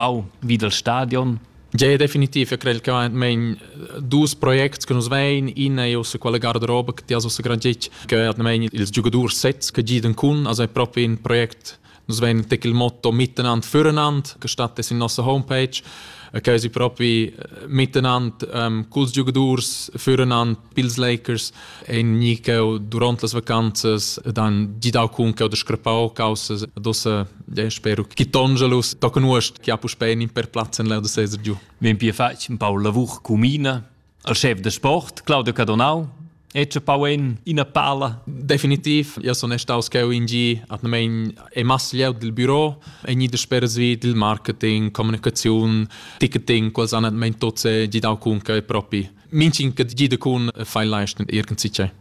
au vi dal stadion? Tgei definitiv, eu crei che mein dus projects che nus vein, ina è ussa quella garderoba che ti has ussa grangic, che hat mein ils giugadors sets che giden cun, also è proprio in project Nus vein tec il motto miteinander füreinander, gestattet in nossa homepage, che si proprio miteinander ähm, cun giogadors füreinander pils Lakers ein ni cheu duront las vacanzas ed han gidau cun cheu da scrapau causas dossa ja, spero che Tongelus tocca nuost che ha puspei in per plaz en l'erde Cesar giu. Vegn pia fatg un pau lavur comina al chef da sport Claudio Cadonau Ecce Pauen ina pala. Definitiv, ja sono staus cheu in gi atnamein e masslieu dil büro e ni da speras vi dil marketing, kommunikation, ticketing, quels han atnamein tots gidau cun che propi. Mintgin che gida cun fai leisten irgendsicher.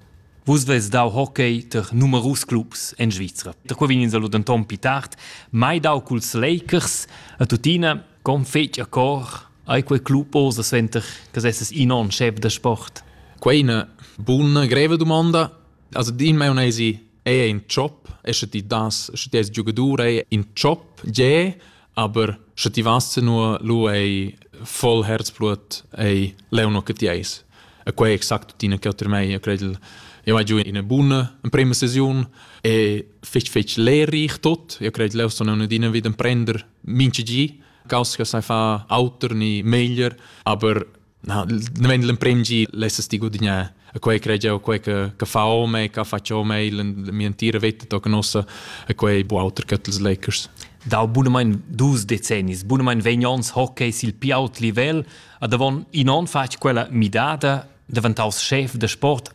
Vus veis dau hockey ter numerus clubs en Svizra. Da qua vegn ins allura denton pi tard mai dau culs Lakers a tuttina con fetg a cor ai quei club osa sventer che sesses in on chef da sport. Quei è una buona greve domanda. Also din mai un'esi Ei è in tschop e sche ti das, sche ti eis giogadur, ei in tschop, gie, aber sche ti vas nu lu ei voll herzblut ei leu no che ti eis. E quei è exact tuttina che otr mei, io credel io vai giù in buna in prima sesione e fitch fitch leere ich tot. Io credel leu sono una dina wieder prender minci gi. Caus che sai fa auter ni meglier, aber na, nemmeno l'emprim gi lessas ti gudignar a quei crede eu quei che che fa ome che faccio ome in mia entira vita tocca nossa a quei bu auter che els Lakers dal bunamein dus decennis bunamein vegn ons hockey sil pi aut livel a davon in on fatg quella midada daventaus chef de sport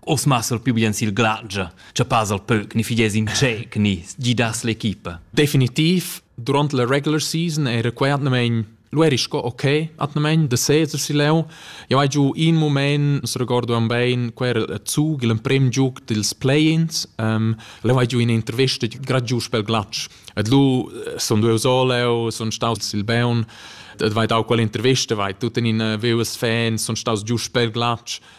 Os massel più bien sil glagia, cha pasal pöc ni figies in tschec ni gidas l'equipa. Definitiv, durant la regular season era quei atnamain Lu eri sco ok, atnamein de Cesar si leu. Eu hai giu in moment, se ricordo am bein, quel era a Zug, l'emprim giug dils play-ins. Um, leu hai giu ina intervista grad giu pel glatsch. Et lu eh, son due so leu, son staus sil Beun, et vai dau quell'intervista, vai tut in in eh, vius fans, son staus giu pel glatsch.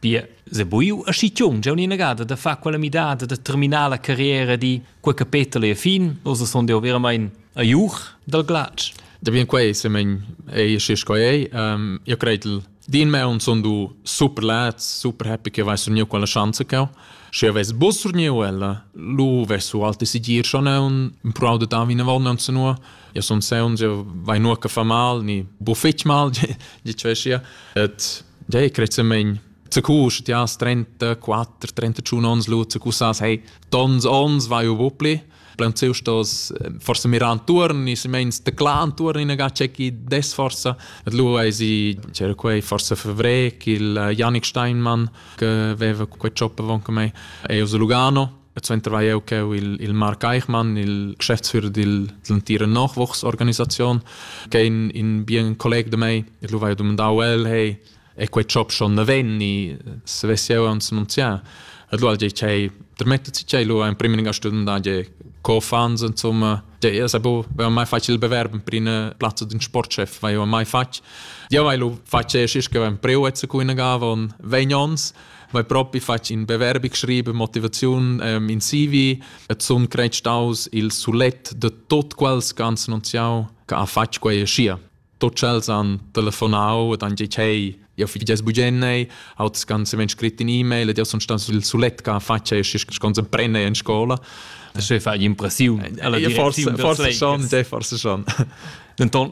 Pia, sebuiu aschi tgiun jeu inagada da far quella midada da terminar la carriera di quei capetel e fin, ossa sun jeu veramein a iuch dal glatsch. Da bien quei semen ei schi sco ei. Um, io cretel din meun sun du super lats, super happy che vais surniu quella chance cheu. Sche ves bus surniu ella, lu ves su alte sigir schon un, un prau de davin in vond non senu, Eu sun seunz, eu vai nur che fa mal, ni bu fetg mal, di sia. Et dei crezzamaing Zacusch, ja, 34, 31 ons lut, zacusas, hey, tons ons vai u bupli. Plein ziu stos forse miran turni, si meins de clan turni in ga checki des forsa. Et lu ei si c'era quei forse fevrec il Janik Steinmann che veva quei choppa von con me. E us Lugano E suenter vai eu cheu il, il Marc Eichmann, il Geschäftsführer dil, dell'entira Nachwuchsorganisation, che è in, in bien collega de mei, e lu vai domandau el, hey, è quei job schon ne venni, se vess eu uns annunziar. E lu al gei chei, der mettet sich chei lu ein prima linea studenta, gei co-fans, insomma, gei, es bo, vai mai facile il bewerben per in plazza d'un sportchef, vai mai fac. Ja, weil du fac es ist, che ein Prioretse ku in gava und wenn uns Vai propi fatg in beverbi schribe motivaziun ähm, in CV et sun creit staus il sulet de tot quels ganz nunziau che ha fatg quei scia. Tot chels han telefonau et han dit hey, io fi ges bugennei, aut ganz wenn scrit in e-mail et io sun staus il sulet che ha fatg e schi con sem prenne in scola. Das ist fa impressiun. Forse forse schon, forse schon. Denton